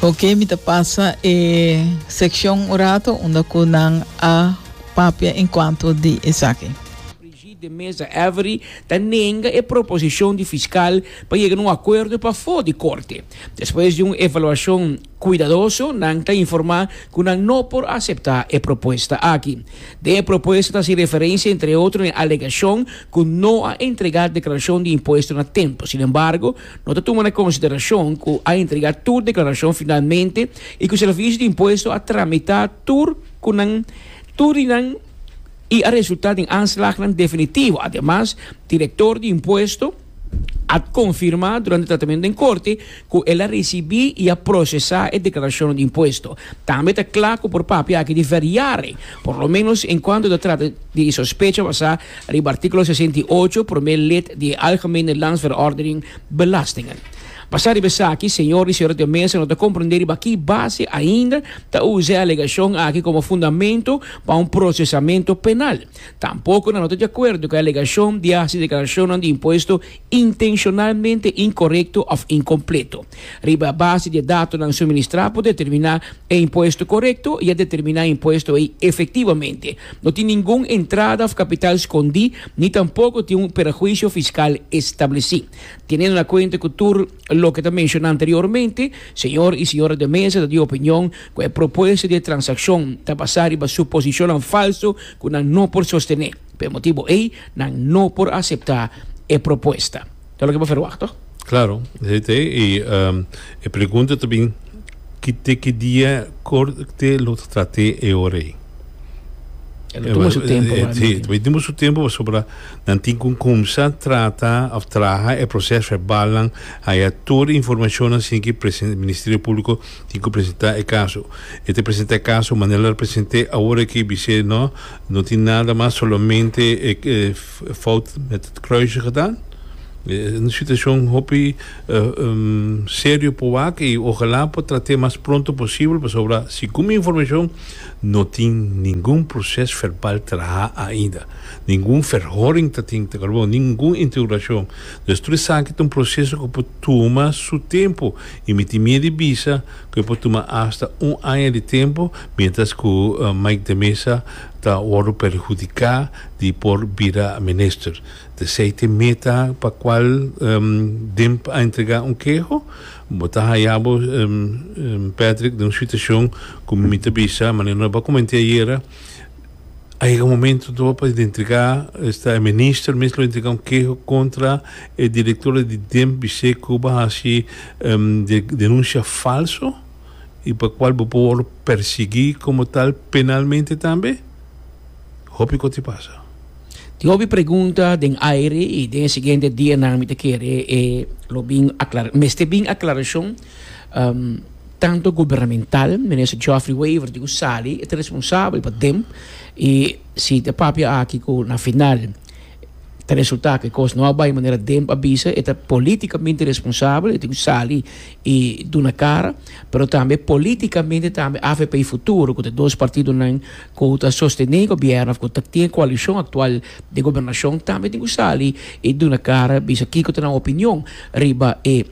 Ok, mi ta pasa e seccion un rato unda cu nan a papia en cuanto di esaki. Brigitte de Meza Avery ta nenga e proposicion di fiscal pa yega na un acuerdo pafo di Corte. Despues di un evaluacion cuidadoso nan ta informa cu nan no por acepta e propuesta aki. Den e propuesta ta haci referencia entre otro na e alegacion cu no a entrega declaracion di impuesto na tempo. Sinembargo, No ta tuma na konsiderashon ku a entregá tur deklarashon finalmente i ku Sèrvisio di Impuesto a tramitá tur ku nan tur di nan i a resultá den aanslagnan definitivo. Ademas, Direktor di Impuesto a konfirmá durante tratamentu den korte ku el a risibí i a prosesá e deklarashonnan di impuesto. Tambe ta kla ku por papia aki di veriare, por lo menos en kuantu ta trata di e sospecha basá Riba artíkulo sesenta i ocho, promé lid di e Algemene Landsverordening Belastingen. Basá riba esaki, señor i señorita mesa no ta komprendé riba ki base ainda ta usa e alegashon aki komo fundamentu pa un prosesamentu penal. Tampoko nan no ta di akuerdo ku e alegashon di hasi deklarashonnan di impuesto intenshonalmente inkorekto òf inkompleto. Riba base di e datonan suministrá por determiná e impuesto korekto i a determiná e impuesto ei efektivamente. No tin ningun entrada òf kapital skondí ni tampoko tin un perhuisio fiskal establesí. Tenendo na kuenta ku tur loke ta menshoná anteriormente, señor i señora de mesa ta di opinion ku e propuesta di e transakshon ta basá riba suposishonnan falso ku nan no por sostené. P'e motibu ei nan no por aseptá e propuesta. Ta loke bo ferwagt to? Klaro, esei ta e. I e pregunta ta bin, ki te ki dia Korte lo ta trat'é e ora ei? E lo tuma su tempu wak dor. E tuma su tempu pasobra nan tin ku kumsa trata òf traha e proses verbalnan, haya tur e informashonnan sin ki Ministerio Públiko tin ku presentá e kaso. E ta presentá e kaso manera lo present'é awor aki bis'é, no. No tin nada mas solamente e fout met het kruisje gedaan. Un situacion hopi serio por wak y ojala por trate mas pronto posibel pasobra segun mi informacion no tin ningun proces verbal traha ainda. Ningun verhoring ta tin ta kalbo, ningun interogacion. Tur esaki ta un proceso cu por tuma su tempo y mi tin miedi bisa. cu e por tuma hasta un aña di tempo, mientras cu Mike de Meza ta wordo perhudica di por bira minister. Tesey t'e meta pa cual Demp a entrega un keho. Bo ta haya bo, Patrick, den un situacion cu mi ta bisa, manera nos a comenti ayera, A yega un momento to pa identifica esta e minister mes lo identifica un keho contra e director di DEMP di Sey Cuba haci um denuncia falso y pa cual bo por wordo persegui como tal penalmente tambe? Hopi cos tin pasa. Tin hopi pregunta den aire y den e siguiente dianan mi ta kere e lo bin aclara mester bin aclaracion. Tanto gubernamental, Minister Geoffrey Wever di Usali e ta responsabel pa dem y si ta papia aki cu na final ta resulta cu e cos no a bay manera dem a bisa e ta politicamente responsabel, e tin cu sali y duna cara, pero tambe politicamente tambe avp Futuro cu ta dos partidonan cu ta sostene gobierno of cu ta tin e coalicion actual di gobernacion tambe tin cu sali y duna cara bisa kico ta nan opinion riba e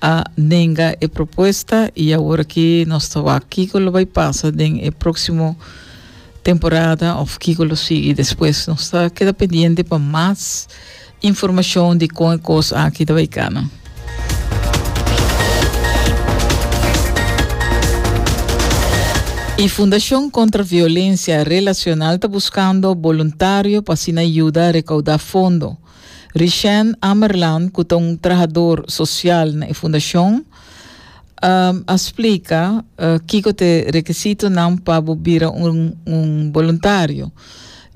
a nenga e propuesta y awor aki nos ta wak kico lo bay pasa den e proximo temporada of kico lo sigui despues. Nos ta keda pendiente pa mas informacion di con e cos aki ta bay cana. E Fundacion Contra Violencia Relacional ta buscando boluntario pa asina yuda recauda fondo. Richène Amerland, ku ta un trahador sosial na e fundashon, a splika kiko ta e rekisitonan pa bo bira un boluntario.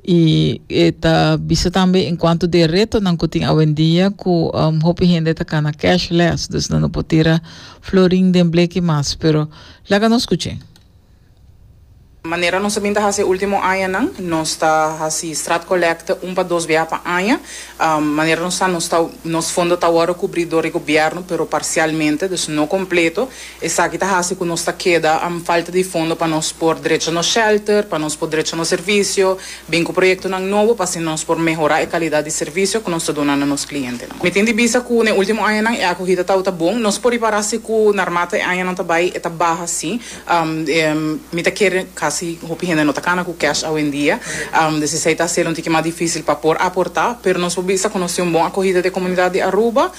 I e ta bisa tambe en kuantu di e retonan ku tin awendia ku hopi hende ta kana cashless, dus nan no por tira florin den bleki mas. Pero laga nos kuch'é. Manera nos a bin ta hasi e ultimo añanan, nos ta hasi straatcollecte un pa dos bia pa aña. Manera nos ta, nos ta, nos fondo ta wòrdu kubrí dor e gobièrnu, pero parsialmente, dus no kompleto. Esaki ta hasi ku nos ta keda falta di fondo pa nos por drecha nos shèlter, pa nos por drecha nos servisio, bin ku proyektonan nobo pa asina nos por mehorá e kalidat di servisio ku nos ta duna na nos klientenan. Mi tin di bista ku n'e ultimo añanan e akohida tabata bon. Nos por ripará si ku narmata e añanan ta bai e ta baha sí. Mi ta kere, kasi hopi hende no ta kana ku cash awendia, des esei ta hase'l un tiki mas difisil pa por aportá, pero nos por bisa ku nos tin un bon akohida den e komunidat di Aruba,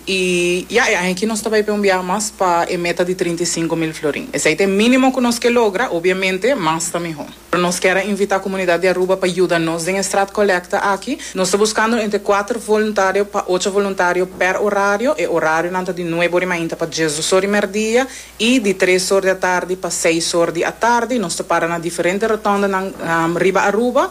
i ya, e aña aki nos ta bai pa e un biaha mas pa e meta di trinta i sinku mil florin. Esei ta e mínimo ku nos ke logra, obviamente mas ta mihó. Pero nos kier a invita comunidad di Aruba pa yuda nos den e straat colecta aki. Nos ta buscando entre cuater voluntario pa ocho voluntario per horario. E horarionan ta di nuebe ori mainta pa diesdos ori merdia y di tres or di atardi pa seis or di atardi. Nos ta para na diferente rotondanan riba Aruba.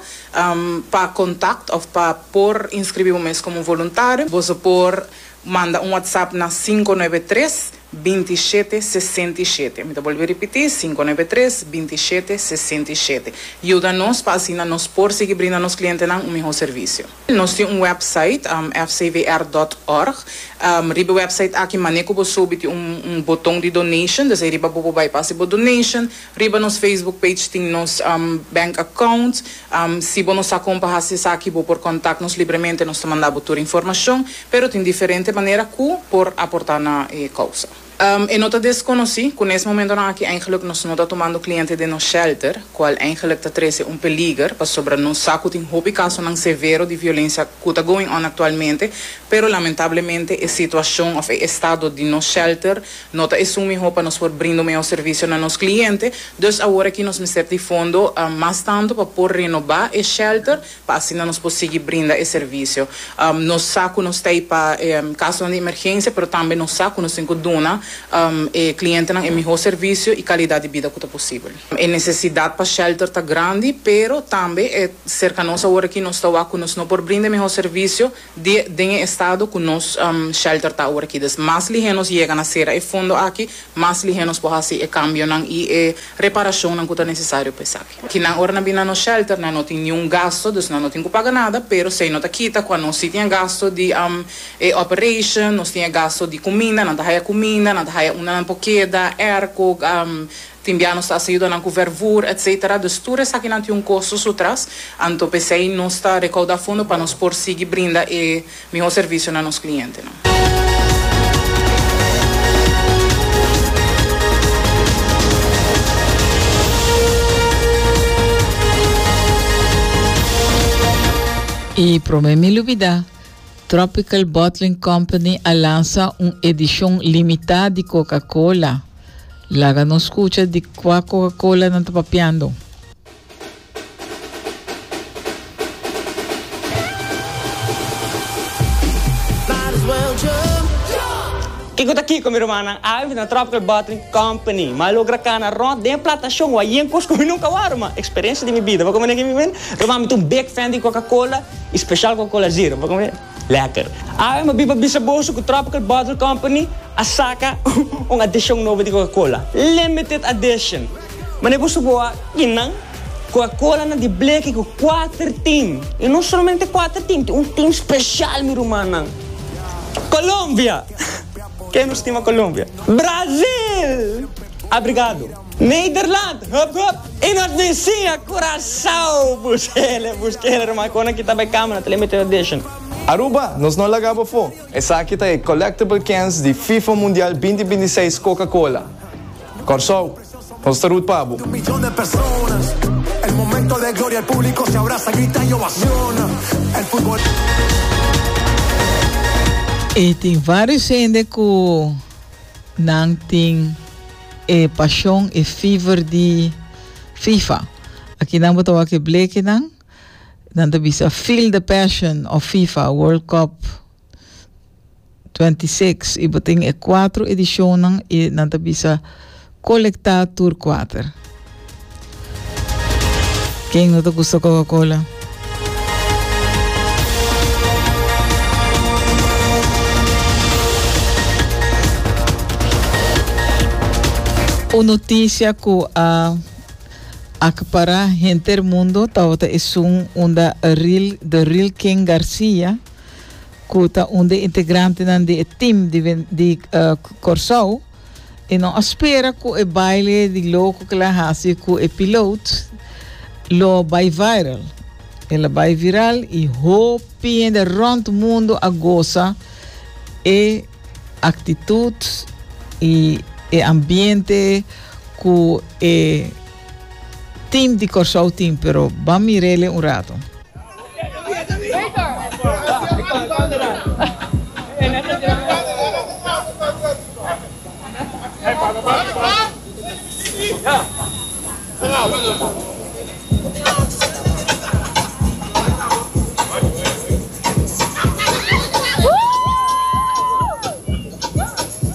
Pa contact of pa por inscribi bo mes como un voluntario bo ta por manda un WhatsApp na sinku nuebe tres binti i shete, sesenta i shete. Mi ta bolbe ripití, sinku noebe tres, binti i shete, sesenta i shete. Yuda nos pa asina nos por sigui brinda nos klientenan un mihó servisio. Nos tin un wèpsait, fcvr dòt org. Riba e wèpsait aki mané ku bo sobi tin un boton di donation, desei riba bo por bai pa hasi bo donation. Riba nos Facebook page tin nos bank account. Si bo no sa kon pa hasi esaki bo por kontak nos libremente, nos ta manda bo tur informashon, pero tin diferente manera ku por aportá na e kousa. E no ta deskonosí ku nes momentonan aki eingeluk nos no ta tumando kliente den nos shelter, kual eingeluk ta trese un peliger pasobra nos sa ku tin hopi kasonan severo di violensia ku ta going on aktualmente, pero lamentablemente e situashon òf e estado di nos shelter No ta esun mihó pa nos por brinda un mihó servisio na nos kliente, dus aworakí nos mester di fondo mas tantu pa por renobá e shèlter pa asina nos por sigui brinda e servisio. Nos sa ku nos ta ei pa kasonan di emergensia, pero tambe nos sa ku nos tin ku duna e klientenan e mihó servisio i kalidat di bida ku ta posibel. E nesesidat pa shèlter ta grandi, pero tambe serka nos aworakí nos ta wak ku nos no por brinda e mihó servisio, di den e estado ku nos shelter ta awor aki. Dus mas lihé nos yega na sera e fondo aki, mas lihé nos por hasi e kambionan i e reparashonnan ku ta nesesario pa esaki. Ki nan ora nan bini na nos shelter nan no tin niun gasto, dus nan no tin ku paga nada, pero esei no ta kita ku anos si tin e gasto di e operation, nos tin e gasto di kuminda, nan ta haya kuminda, nan ta haya unda nan por keda, airco, Tin bia nos ta hasi yuda nan ku vervoer etc. Dus tur esakinan tin un kosto su tras, anto p'esei nos ta rekouda fondo pa nos por sigui brinda e mihó servisio na nos klientenan. I promé mi lubidá, Tropical Bottling Company a lansa un edishon limitá di Coca-Cola! Laga nos scucha di cua Coca-Cola nan ta papiando. Kiko ta kiko mi rumannan, awe mi ta na Tropical Bottling Company. M'a logra cana rond den plantacion wak yen cos cu mi nunca wou ruman. Experiencia di mi bida. Bo a comprende aki mi ta mende? Ruman mi ta un big fan di Coca-Cola y special Coca-Cola Zero. Bo a comprende? Lekker. Awe mi bin pa bisa boso ku Tropical Bottle Company a saka un adishon nobo di Coca-Cola, Limited Addition. Mane boso bo a bin nan? Coca-Colanan di bleki ku kuater tin, i no solamente kuater tin, tin un tin spesial mi rumannan. Colombia! Ke nos tin pa Colombia? Brazil! Abrigado! Nederland, hup hup! I nos tin siña Curaçao! Bus kere, bus kere ruma con a kita pa e camera ta limited edition. Aruba, nos no laga bo fo! Esaki ta e collectible cans di FIFA Mundial binti binti seis Coca Cola. Kòrsou, nos ta root pa bo! E tin vários hende ku Nan tin e pashon, e fever di Fifa. Akinan bo ta wak e blekinan. Nan ta bisa Feel the Passion of Fifa World Cup 26 i bo tin e kuatro edishonnan i nan ta bisa Kolektá tur kuater. Ken no ta gusta Coca Cola? Un noticia cu a acapara henter mundo tabata esun unda Ril de Ril Ken Garcia cu ta un de integrantenan di e team di, di uh, Corsou E no a spera cu e baile di loco que la haci cu e piloot lo bay viral. El a bay viral y hopi hende rond mundo a goza e actitud y e ambiente cu e Team di Kòrsou tin pero ban mirele un rato.